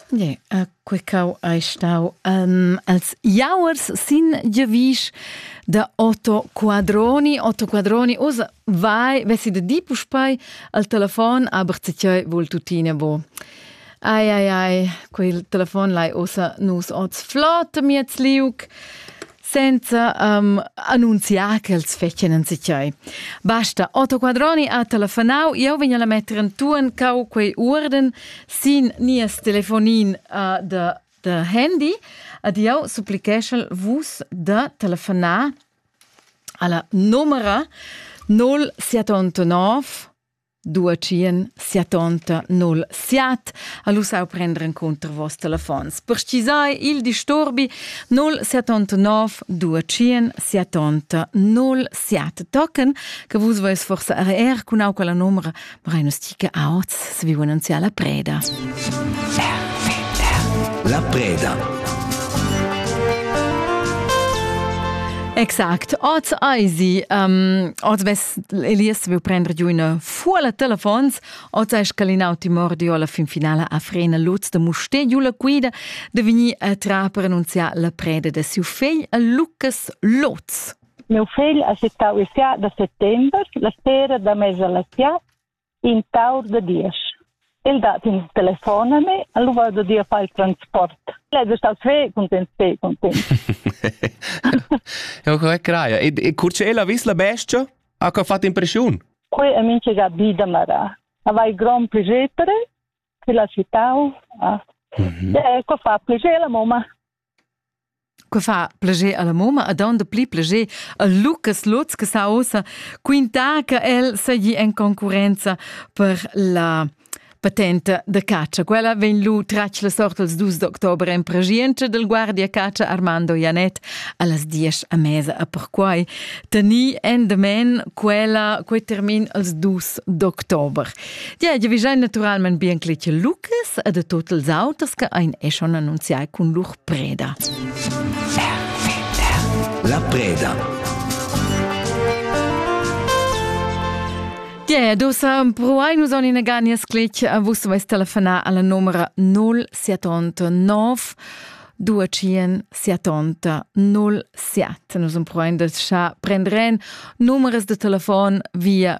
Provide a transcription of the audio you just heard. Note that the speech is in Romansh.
Ie, a quecau ei stau um, als jauers sin Giovisch da Otto Quadroni. Otto Quadroni, usa vai, vessi de di puspai al telefon, aber zetioi vul tutine bo. Ai, ai, ai, quel telefon lai osa nus oz flott miez liuc. senza um, annunziar ch'els fetien en sichai. Basta, Otto Quadroni ha telefonau, io vegna la metter en tuan cau quei urden sin nies telefonin uh, de, de handy, ad io supplicheschel vus de telefonar alla numera 079 Duatschien sia tonta null siat ha lu sau prender encunter vos telefons. Per schisai il disturbi 079 duatschien sia tonta null siat tocken, che vus veis forse er cun auca la numera, ma rein stiche auts, se vi annunzia la preda. La preda. Exakt. Oz eisi, um, oz ves Elias vil prender giu ina fuola telefons, ota scalinau timordio alla fin finala a frena loz de muster giu la quida de veni a tra per annunziar la preda de siu fegl a Lucas Loz. Meu fegl ha settau il sia da settember, la sera da mesa la sia in taur da diesch. El dat in telefon a me, a lui da dir fai il transport. El è stato sve content, sve content. Ja, quella craia. E, e curce ella vis la bestia? Ha che ha fatto impressione? Quei è mince Gabi da Mara. Aveva il gran piacere che la città ha. Mm -hmm. E ecco fa piacere la mamma. Que fa plager alla moma ad onda pli plager a Lucas Lutz che sa ossa quintar che el seigi en concurenza per la patenta da catscha. Quella vegn lu tratg la sort els dus d'october en pregienza del guardia catscha Armando Janet allas diesch a mesa a perquai teni endamen quella quei termin als dus d'october. Ja, ja, vi giain naturalmain bien cletg Lucas e de tot els auters che ein e schon annunziai cun lur preda. La preda. Yeah, dosa pruai nus on in aganias clic a vus vais telefonar alla numera 0789 277 07. Nus am proen de scha prenderen numeres de telefon via